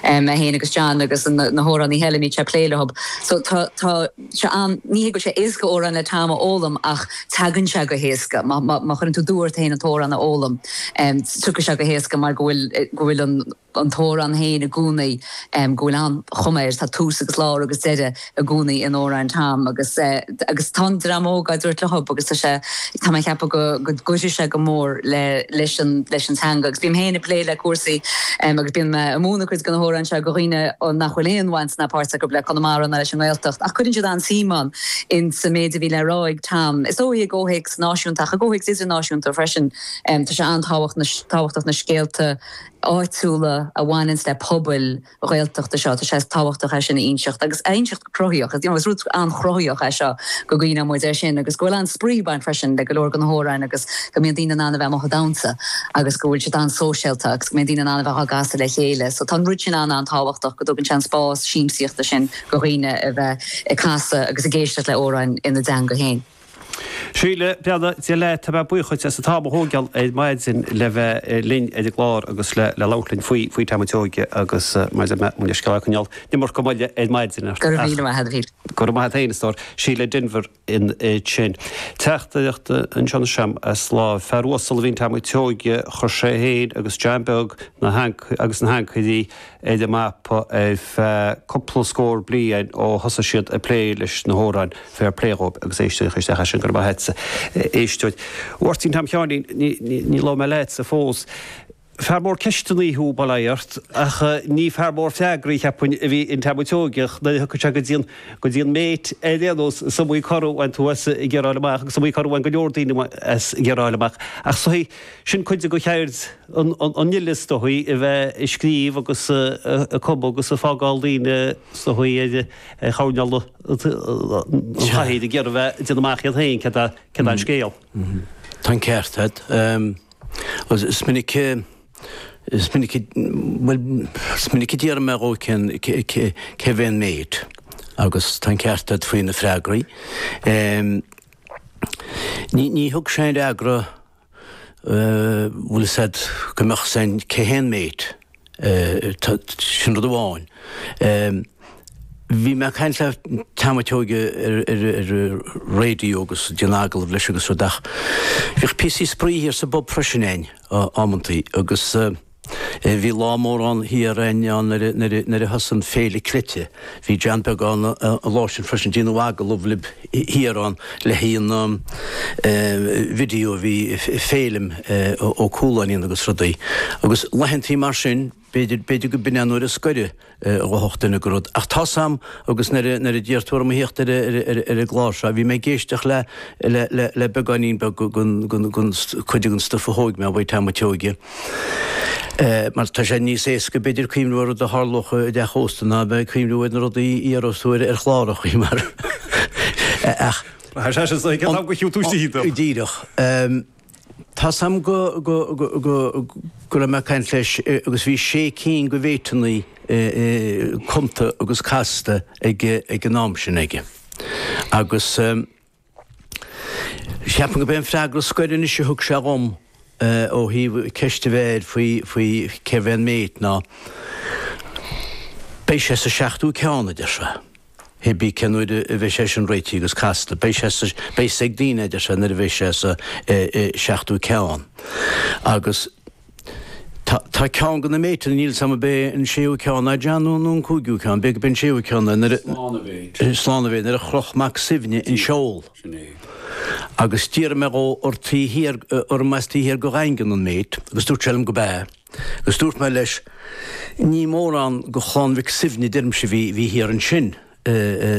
mé féin agus John agus na hamhránaithe eile a mbíonn sé ag plé leo so tá tá sé an ní hé go bhfuil sé éasca amhrán le Tom a fhoghlaim ach teagann sé go héasca má má má chuireann tú dua ort féin an t-amhrán a fhoghlaim tiocfaidh sé go héasca mar go bhfuil go bhfuil an an t-amhrán féin i gcónaí go bhfuil an-chuma air tá tús agus lár agus deireadh i gcónaí in amhráin Tom agus agus tá an dream óg á dtabhairt leo agus tá sé tá mé a cheapadh go go gcuirfidh sé go mór le leis an leis an teanga agus bím féin ag plé le cúrsaí agus bíonn mé ag múineadh cuid de na hamhráin seo go dhaoine ó nach bhfuil aon bhaint ná páirt acu le Conamara ná leis an nGaeltacht ach cuireann siad an-suim ann in sa méid a bhí le rá ag Tom is dóigh i gcomhthéacs náisiúnta ach i gcomhthéacs idirnáisiúnta freisin tá sé an-tábhacht an-tábhachtach na scéalta áitiúla a bhaineanns le pobail Ghaeltachta seo. Tá sé tábhachtach é sin a inseacht agus a inseacht go cruthaíoch. Is rud an-chruthaíoch é seo go gcuimhneodh muid air sin agus go bhfuil an-spraoi ag baint freisin le go leor de na hamhráin agus go mbíonn daoine in ann a bheith amuigh ag damhsa agus go bhfuil siad an-sóisialta agus go mbíonn daoine in ann a bheith á gcasadh le chéile. So tá an rud sin an-an-tábhachtach go dtugann sé an spás siamsaíochta sin go dhaoine a bheith ag casadh agus ag éisteacht le hamhráin ina dteanga féin. Síle, beannacht Dé leat, tá mé buíoch duit as an t-am a thógáil ar maidin le bheith linn ar an gclár agus le labhairt linn faoi faoi Tom an tSeoighe agus maidir le Muintir Scáil Chanáil, d'imir go maith ar maidin ach. Go raibh míle maith agat. Go raibh maith agat féin a stór. Síle Denvir ansin. Teachtaireacht anseo ag rá fear uasal a bhí in Tom an tSeoighe, chuir sé féin agus John Beag na agus na hAncairí, ar an mapa ar feadh cúpla scór bliain ó thosaigh siad ag plé leis na hamhráin, fair play dhóibh, agus éisteoir isteach ar sin, go raibh maith a't, a éisteoir. A Mháirtín Tom Sheáinín, Ní, ní, ní labhair mé leatsa fós. Fear mór ceisteannaí thú, bail ó Dhia ort, ach ní fear mór freagraí, cheapfainn, a bhí in Tom an tSeoighe, nuair a thiocfadh sé go dtí an, go dtí an mate, ar aon nós, is iomaí cor a bhain tú as ag iarraidh a fháil amach, agus is iomaí cor a bhain go leor daoine as ag iarraidh a fháil amach, ach is dóichí. Sin cuid de cheird an fhile is dóichí a bheith ag scríobh agus ag cumadh agus ag fágáil daoine is dóichí ar choirnéal an chathaoir ag iarraidh a bheith ag déanamh amach iad féin céard é an scéal. Tá an ceart agat. Is minic is minic bhuel is minic a d'iarr mé dhó cén cérbh é an mate agus tá an ceart agat faoi na freagraí. Ní thug sé aon fhreagra bhfuil a fhios a't go mbeadh a fhios a'inn cé hé an mate. Sin rud amháin. Bhí mé ag caint le Tom an tSeoighe ar ar raidió agus ag déanamh agallamh leis agus rud ach bhíodh píosaí spraoi thiar sa bpub freisin a'inn amantaí agus. Bhí lá mór ann thiar a'inn ann nuair a, nuair a, nuair a thosaigh an Féile Cleite. Bhí John Beag ann an lá sin freisin. Déanadh agallamh lib thiar ann le haghaidh an eh, video a bhí Féilim eh, Ó Cualáin a dhéanamh agus rudaí. Agus laethantaí mar sin, b'fhéidir, b'fhéidir go b'in é an uair scoir a. ghabhfadh duine go rud. Ach tá 's 'am agus nuair a d'iarr tú orm a thíocht ar an gclár seo, bhí mé ag éisteacht le, le, le, le beagáinín beag den, den, den, cuid den stuif a thóg mé uaidh Tom an tSeoighe. Eh, mar tá sé níos éasca b'fhéidir cuimhniú ar rud a tharlódh i dteach ósta ná bheith ag cuimhniú ar na rudaí a iarrós tú ar, ar chlár an chaoi mar. Eh, ach. Tá sé sin, so, ag ceann am go chiú tú sí do. Díreach. Ehm. Tá 's 'am go, go, go, go, go raibh mé ag caint leis agus bhí sé cinn de mhéiteannaí cumta agus casta ag, ag an am sin aige. Agus ceapaim go b'é an freagra scoir anois a thug sé dhom ó thaobh ceist a bheith air faoi, faoi cérbh é an méit ná, beidh sé sa seachtú ceann, a deir sé. Cibé cén uair a bheidh sé sin réitithe agus casta? Beidh sé sa, beidh 's ag daoine, a deir sé, nuair a bheidh sé sa seachtú ceann. Agus tá, tá ceann de na méiteanna, níl 's 'am ab é an séú ceann a déanadh nó, nó an cúigiú ceann, b'fhéidir, b'fhéidir an séú ceann é nuair a, slán a bheidh, slán a bheidh, nuair a chroch Mac Suibhne an seol. Sin é. Agus d'iarr mé dhó ar taobh thiar, arb as taobh thiar de Dhaingean an méit agus dúirt sé liom go b'ea. Agus dúirt mé leis, ní mórán de Chlann Mhic Suibhne deirimse bhí thiar ansin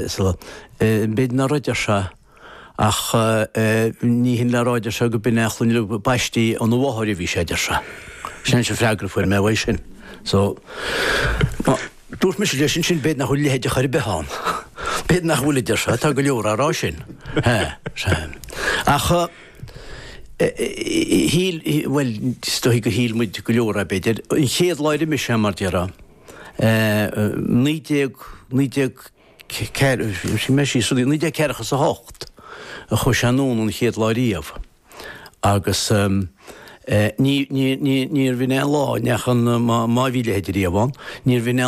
so b'fhéidir nach raibh, a deir sé, ach ní hin le rá, a deir sé, go b'in é a shloinne nó ba baistí óna mháthair a bhí sé, a deir sé. Sin an freagra a fuair mé uaidh sin. So, má, dúirt mise leis ansin, b'fhéidir nach bhfuil a leithéide chor ar bith ann. B'fhéidir nach bhfuil, a deir sé, tá go leor á rá sin. Sea, ar sé. Ach. Shíl, bhuel, is dóigh go shíl muid go leor, b'fhéidir, an chéad lá ar imigh sé, mar déarfá, naoi déag, naoi déag ceathair, let me see, rud naoi déag ceathracha is a hocht a chuaigh sé anonn an chéad lá riamh agus ní, ní, ní, níor bhinn aon lá, neach an, má bhí a leithéide riamh ann, níor bhinn aon